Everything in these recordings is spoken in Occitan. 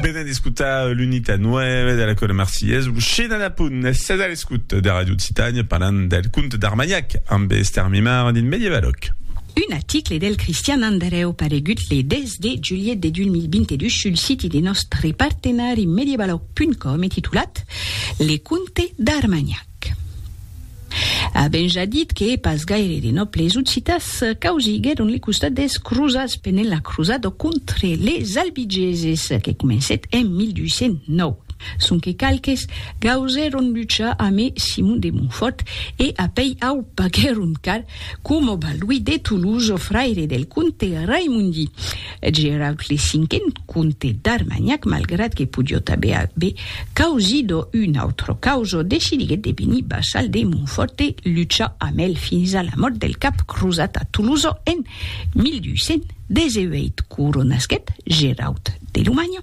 Venen d'escutar l'unita 9 de la Cora Marcillès, Luxina de Punt, sed a l'escut de Radio Occitània parlant del conte d'Armanhac amb Esther Mimard dins Medievaloc. Un article del Cristian Andrèu paregut le 10 de julhet de 2022 sul siti de nòstre partenari medievaloc.com e titulat Le conte d'Armanhac. Avèm ja dit que pas gaire de nòbles occitas causiguèron le costat des crosats pendent la crosada contre les albigeses que comencèt en 1209, sonque qualques gausèron luchar amé Simon de Montfòrt e apèi au paguèron car, coma Balduí de Toulouse, fraire del comte Raimondi. Eth Geraut le cinquen comte d'Armanhac, malgrat que podiot aver aver causido un autre causo, decidiguet de venir vassal de Montfòrt e luchar amb el fins a la mòrt del cap crosat a Tolosa en 1218. Coronasquet Geraut de Lomanha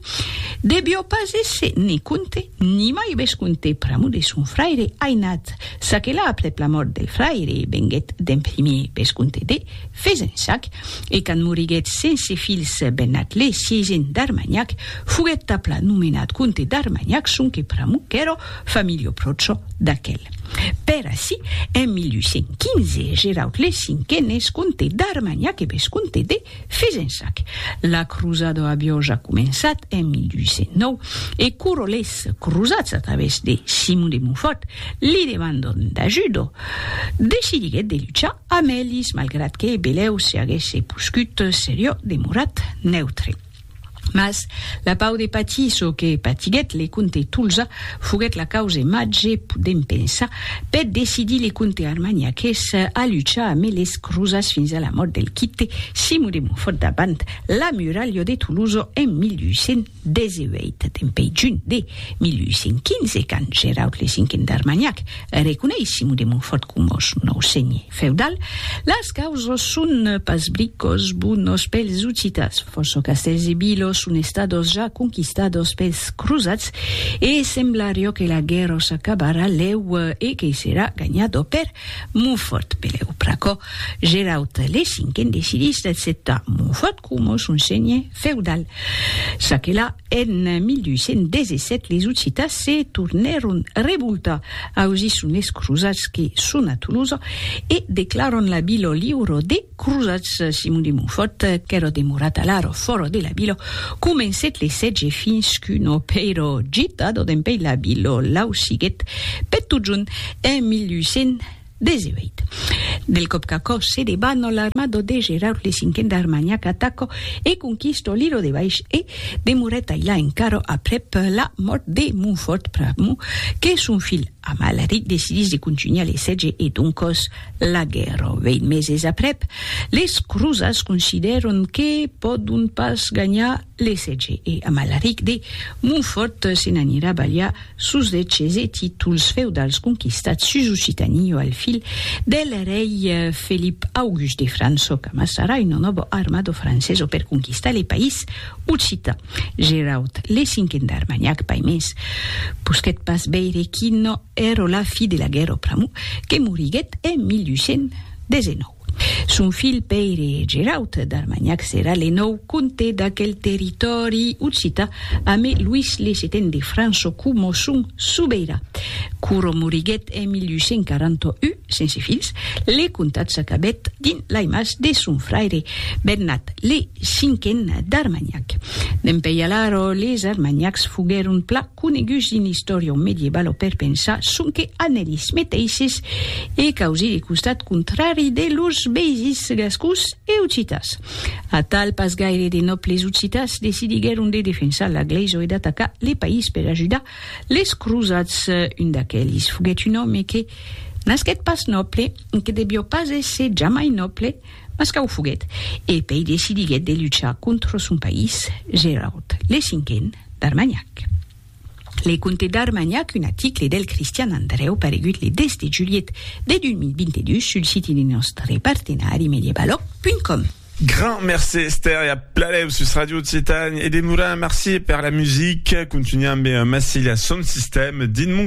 devió pas èsser ne comte ni mai vescomte pr'amor de son fraire ainat, çaquelà aprèp la mòrt del fraire venguet d'en primier vescomte de. Fezensac, e quand moriguèt sense filhs Bennat le sieisin d'Armanhac, foguèt tapla nomenat comte d'Armanhac sonque pr'amor qu'èra familha pròcha d'aquel. Per ací, en 1815, Geraud le Cinquen es comte d'Armanhac e vescomte de Fezensac. La crosada aviá ja començat en 1809, e quora les crosats, a través de Simon de Montfòrt, li demandan d'ajuda, decidiguèt de luchar Amèlis, malgrat que Belèu se aguèsse poscut seriò demorat neutre. Mas la pau de patir çò que patiguèt le comte Tolza foguèt la cause màger, podèm pensar, per decidir le comte armagnaques a luchar amé les crosats fins a la mòrt del quite Simon de Montfòrt davant la muralha de Tolosa en 1800. 18 dempè junh de 1815, quand Geraud le Cinquen d'Armagnac reconeis Simon de Montfòrt coma son nòu senhè feudal, las causas son pas bricòs bonos pels Ocitans, fòrça castèls e vilas son estadas ja conquistadas pels crosats e semblariá que la guèrra s'acabarà lèu e que serà ganhada per Montfòrt. Pelèu pr'aquò, Geraud le Cinquen decidís d'acceptar Montfòrt, coma son senhe feudal. Çaquelà, en 1217 les Occitans se tornèron revoltar ausir son es crosats que son a Tolosa e declaran la vila liura des crosats. Simon de Montfòrt, qu'èra demorat alara fòra de la vila, comencèt le sètge fins qu'un opèira gitada dempèi la vila l'ausiguèt per totjorn en 1200. 18. Del còp qu'aquò se debat no l'armado de Geraud le cinquen d'Armanha qu'ataco e conquisto Liro de Baish e demorèt ailà encara aprèp la mòrt de Montfòrt pr'amor que son filh Amalric decidís de contunhar le sètge e doncòs la guèrra. Vèit meses aprèp, les crosats considèron que pòdon pas ganhar Lessètge e Amalaric de Montfòrt se n'anirà balhar sos deches e títols feudals conquistats sus Occitanie o al fil del rei Felip August de França o qu'amassarà una nòva armada francesa per conquistar le país occitan. Geraud le Cinquen d'Armagnac pas mens posquèt pas veire quina èra la fi de la guèrra pr'amor que moriguèt en 1819. Son filh Pèire Geraut d'Armanhac serà le nòu comte d'aquel territòri occità amé Luís le Seten de França coma son sobeirà. Quora moriguèt en 1841, sense filhs, le comtat s'acabèt dins lai mas de son fraire Bernat le Cinquen d'Armanhac. Dempeï alara les Armanhacs foguèron pla coneguts dins l'istòria medievalo per pensar sonque an elis meteisses e causir le costat contrari de lors veisins gascons e occitas. Atal, pas gaire de nòbles occitas decidiguèron de defensar la glèisa e d'atacar le país per ajudar les crosats. Un d'aquelis foguèt un òme que nasquèt pas nòble e que devió pas èsser jamai nòble, Mas quau foguèt, e pei decidiguèt de luchar contra son país, Gerard le Cinquen d'Armanhac. Le Comte d'Armanhac, un aticle del Cristian Andrèu paregut le 10 de julhet de 2022 sul siti de nòstre partenari medievaloc.com. Grand mercé Esther e a pladèu sus Radio Occitània e demorar merci per la musica, contunhar ambe Massilia son sistèm dins mon cap.